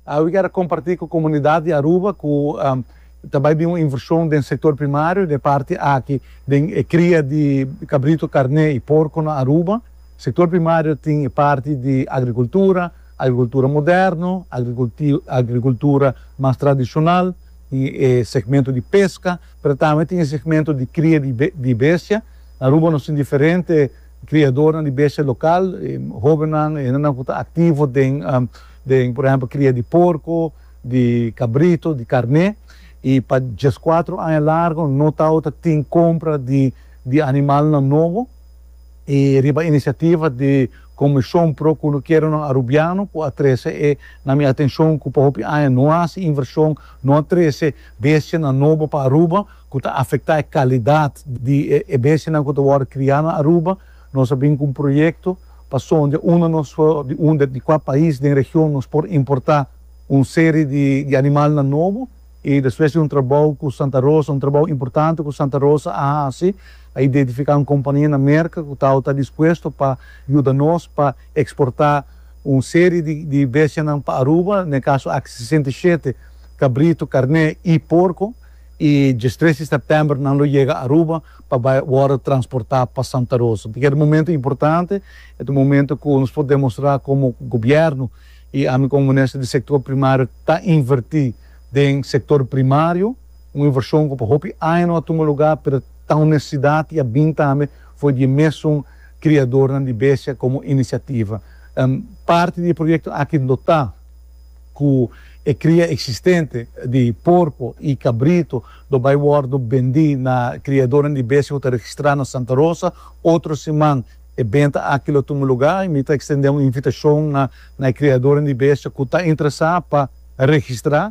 Awe kier a kompartí ku komunidat di Aruba ku ta bai bin un invershon den sektor primario den e parti aki den e kria di kabrito, karné i porko na Aruba. Sektor primario tin e parti di agrikultura, agrikultura moderno, agrikultura mas tradishonal, tin e segmento di peska, pero tambe tin e segmento di kria di bestia. Na Aruba nos tin diferente Kriadornan di bestia lokal, hobennan, e hendenan ku ta aktivo den den por ehèmpel kria di porko, di kabrito, di karné i pa dies kuater aña largu no ta ota tin kompra di di animalnan nobo i riba inisiativa di Komishon Pro Kunukeronan Arubiano ku a trese e na mi atenshon ku pa hopi aña no a hasi invershon, no a trese bestianan nobo pa Aruba. ku ta afektá e kalidat di e bestianan ku ta wòrdu kriá na Aruba, nos a bin ku un proyekto pa sonja un na nos di un di kua pais den region nos por importá un seri di animalnan nobo. I despues di un trabou ku Santa Rosa, un trabou importante ku Santa Rosa a hasi, a identifiká un kompania na Merka ku tau ta dispuesto pa yuda nos pa eksportá un seri di bestianan pa Aruba, na e kaso aki sesenta i shete kabritu, karné i porko. y dje tres di september nan lo yega Aruba pa bay wordo transporta pa Santa Rosa. Entonces keda momento importante, e ta un momento cu nos por demostra como gobierno y ami como minister di sector primario ta inverti den sector primario, un inversion cu pa hopi aña no a tuma lugar pero ta un necesidad y a bin tambe for di e mesun criadornan di bestia como iniciativa. Parti di e proyecto aki lo ta. ku e kria eksistente di porko i kabritu lo bai wòrdu bendí na kriadornan di bestia ku ta registrá na Santa Rosa otro siman. E benta aki lo tuma lugá i mi ta ekstendé un invitashon na na e kriadornan di bestia ku ta interesá pa registrá.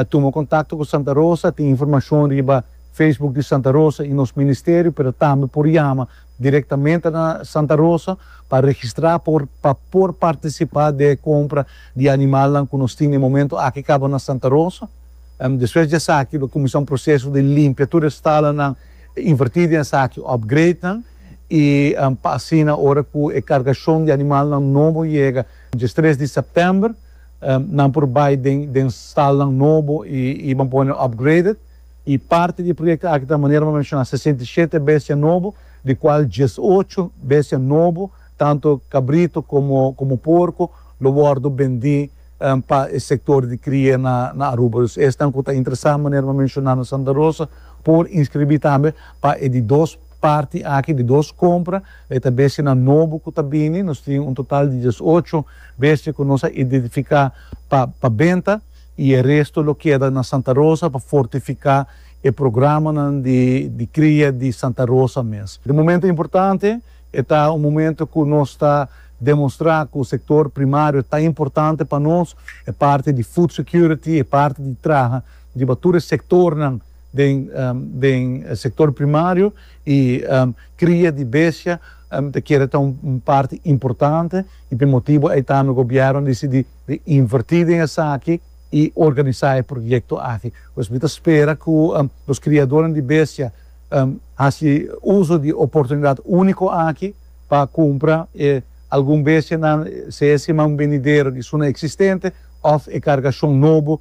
Tuma kontakto ku Santa Rosa, tin informashon riba Facebook di Santa Rosa i nos ministerio, pero tambe por yama directamente na Santa Rosa pa registra por pa por participa di e compra di animalnan cu nos tin e momento aki caba na Santa Rosa. Despues di esaki lo cuminsa un proceso di limpia tur e stalanan, inverti den esaki upgrade nan y pa asina ora cu e cargacion di animalnan nobo yega diestres di september nan por bay den den stalnan nobo y y ban pone upgraded. i parti di e proyekto aki ta manera pa menshoná sesenta i shete bestia nobo, di kual dies ocho bestia nobo, tantu kabritu komo komo porku, lo wòrdu bendí pa e sektor di kria na na Aruba. Dus esnan ku ta interesá manera pa menshoná na Santa Rosa por inskribí tambe pa e di dos parti aki, di dos kompra. E ta bestianan nobo ku ta bini. Nos tin un total di dies ocho bestia ku nos a identifiká pa pa benta. y e resto lo keda na Santa Rosa pa fortifica e programanan di di cria di Santa Rosa mes. E momento importante, e ta un momento cu nos ta demonstra cu sector primario ta importante pa nos, e parti di food security, e parti di traha riba tur e sectornan den den sector primario y cria di bestia ta keda ta un parti importante y p'e motibo ey tambe gobierno a dicidi di invertí den esaki i organisá e proyekto aki. Pues mi ta spera ku nos kriadónan di bestia hasi uso di oportunidat úniko aki pa kumpra e algun bestianan, sea e siman benidero di Suna eksistente òf e kargashon nobo.